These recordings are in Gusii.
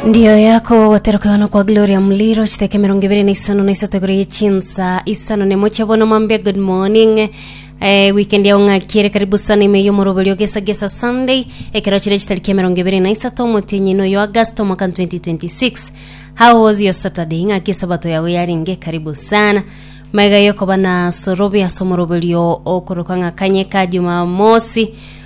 Ndiyo yako goteroka no kwa Gloria Muliro chiteke mirongo ibere na isano na isato igoro ye chinsa isano ne moche bono mambia good morning eh, weekend yao ng'akiere karibu sana ime yomoroberi ogesa gesa Sunday ekero chire chitariki ya mirongo ibere na isato omotienyi noyo August omwaka 2026 how was your Saturday ng'aki esabato yago yarenge karibu sana maiga yokoba na sorobia somoroberio okoroka ng'akanye ka Jumamosi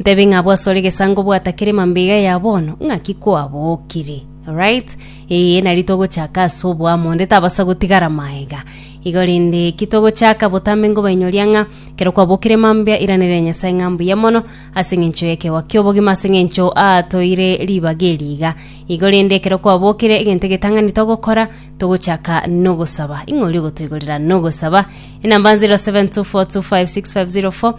Ntebe ng'a bwasore gesango bwatakere mambega ya bono, ng'aki kwabokire? Right? Ee, nari togochaka ase oboamo, onde tabasa gotigara maega. Igo rende ki togochaka botambe ngobainyoria ng'a kero kwabokire mambia iranera Nyasae ng'a mbuya mono ase engencho y'ekegoa ki'obogima ase engencho atoire ribaga eri iga. Igo rende ekero kwabokire egento egetang'ani togokora togochaka nogosaba. Ing'o oria ogotoigorera nogosaba? Enamba 0724256504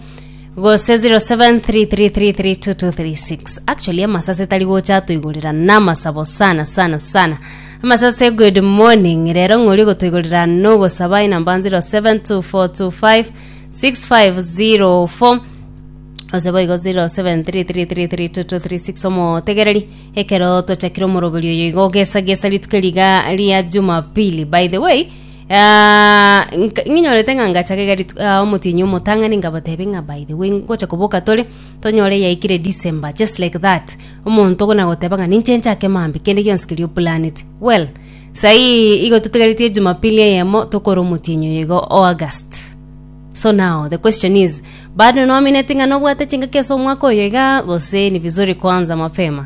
gose 0733332236 actually amasase tari gocha atoigorera namasabo sana sana sana amasase good morning rero ng'ori gotoigorera nogosaba inamba 0724256504 gose boigo 0733332236 omotegereri ekero twachakire omoroberi oyo igo ogesagesa rituko riga ria jumapili by the way Ah, nka- ng'inyorete ng'a ngacha kegari t- ah, omotienyi omotang'ani ngabatebi ng'a by the way ngocha koboka tore tonyore yaikire december just like that omonto gona goteba ng'a ninche nchake mambia kende gionsi keria oplanete well saii igo totigaretie jumapili eyemo tokore omotienyi oyo igo o august so now the question is bado noamineti ng'a nobwate chingaki ase omwaka oyo igaa gose ni vizuri kuanza mapema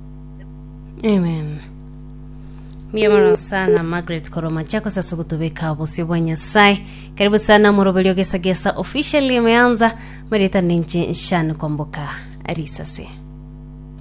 Amen. Mbuya mono sana Margaret Koroma chako sasa kutubeka obosio bwa Nyasaye. Karibu sana moroberio gesa gesa officially imeanza marita ninche nshani komboka risase.